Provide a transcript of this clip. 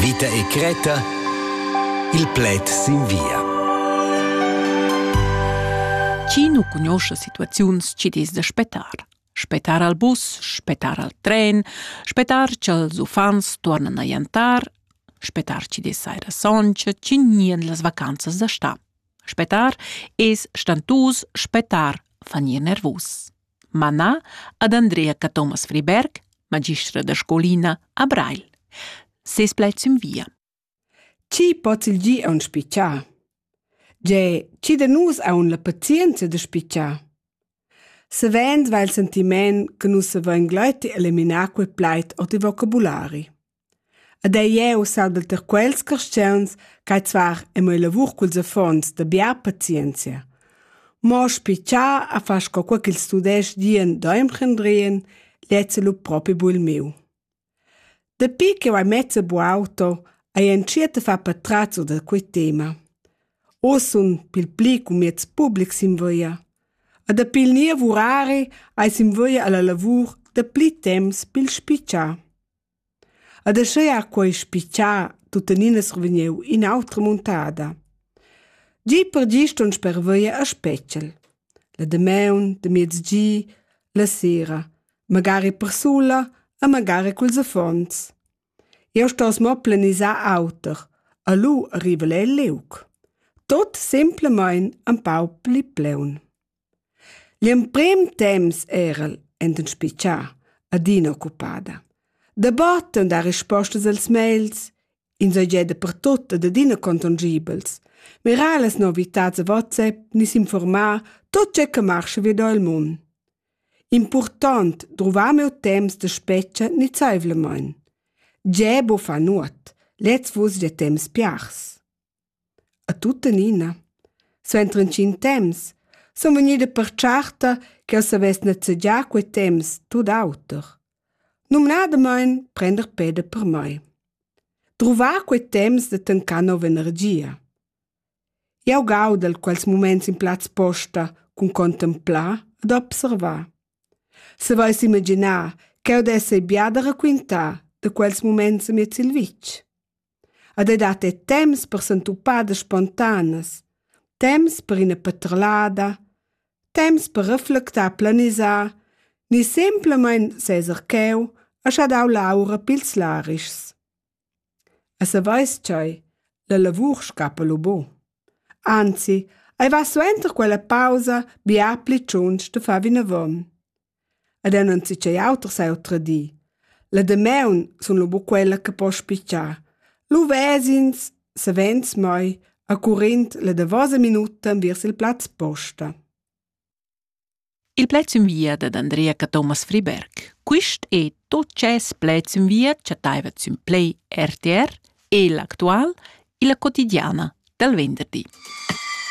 Vita e Creta Il pled sin via. Chi nu cugnuoscha situaziuns chi'd es da spettar? Spettar al bus, spettar al tren, spettar cha'ls uffants tuornan a jantar, spettar chi dess saira soncha, chi gnien las vacanzas da stà. Spettar es stantus, spettar fa gnir nervus. manà ad Andrea Cathomas Friberg, magistra da scolina a Breil. Ses plaid sün via. Chi pots il gi aun spichar? Ge, chi da nus aun la pazienza da spichar? Savend va il sentiment che nus savein gleiti eliminar quel plaid o il vocabulari. Ed ei jeu salvel tier quels carstgauns ch'ei zvar en mia lavur culs affons da bia pazienzia. Mo spi cha a far sco quei ch'ils tudestgs dien da emprendrien, lezza lu propi bul miu. Dapi ch'jeu hai mezza bu auto, hai entschiet a far patratzo da quei tema. Oz sun pil pli cun mieds publics sin via. E dapi il ni lavurari hai sin via alla lavur da pli temps pil spitschar. Ed aschia ha quei spitgà tuttenina survegniu in'autra muntada. Gi per gi ston sperveir a Spetgel. La damaun, de miezgi, la sera, magari persula e magari culs affons. Eu stos mo planisar auter, a lu arriva el liug. Tot semplamain empau pli pleun. L'emprim temps era el enten spitschar adina occupada. Dabatten dar rispostas als mails, insatgè dapertut ed adina contongibels, mirar las novitads a WhatsApp ni s'informar tot tgè che marscha vi da il mund. Impurtant druvar meu temps da spetga nizaivlamain. Tgè bo fa nuot, lez vus de temps piars. A tuttenina, suenter intgin temps, sun vegnida pertscharta ch'el savess nezegiar quei temps tut auter. Numnadamain prender peda per mei. Druvar quei temps da tancar nova energia. Jau gaudel quels muments in plaz posta cun contemplar ed observar. Savais imaginar ch'eu dess ei bia da raquintar da quels muments amiez il vitg? Ed ei dat era temps per sentupadas spontanas, temps per ina paterlada, temps per reflectar, planisar ni semplamein seser cheu a schadau l'aura pils larischs. E saveis tgei, la lavur scappa lu bu. Anzi, ei va suenter quella pausa bia pli tschunsch da far vinavon. Ed el non zi ch'ei auter s'hau tradii. La damaun sun lu buc quella che po spitschar. Lu ves'ins, savens mai, a currind la davosa minuta enviers il plaz posta. Il plaz in via dad Andrea Cathomas Friberg. Quist è tot ces plaz in via chattaiva sün Play RTR e l'actual illa quotidiana dal venderdi.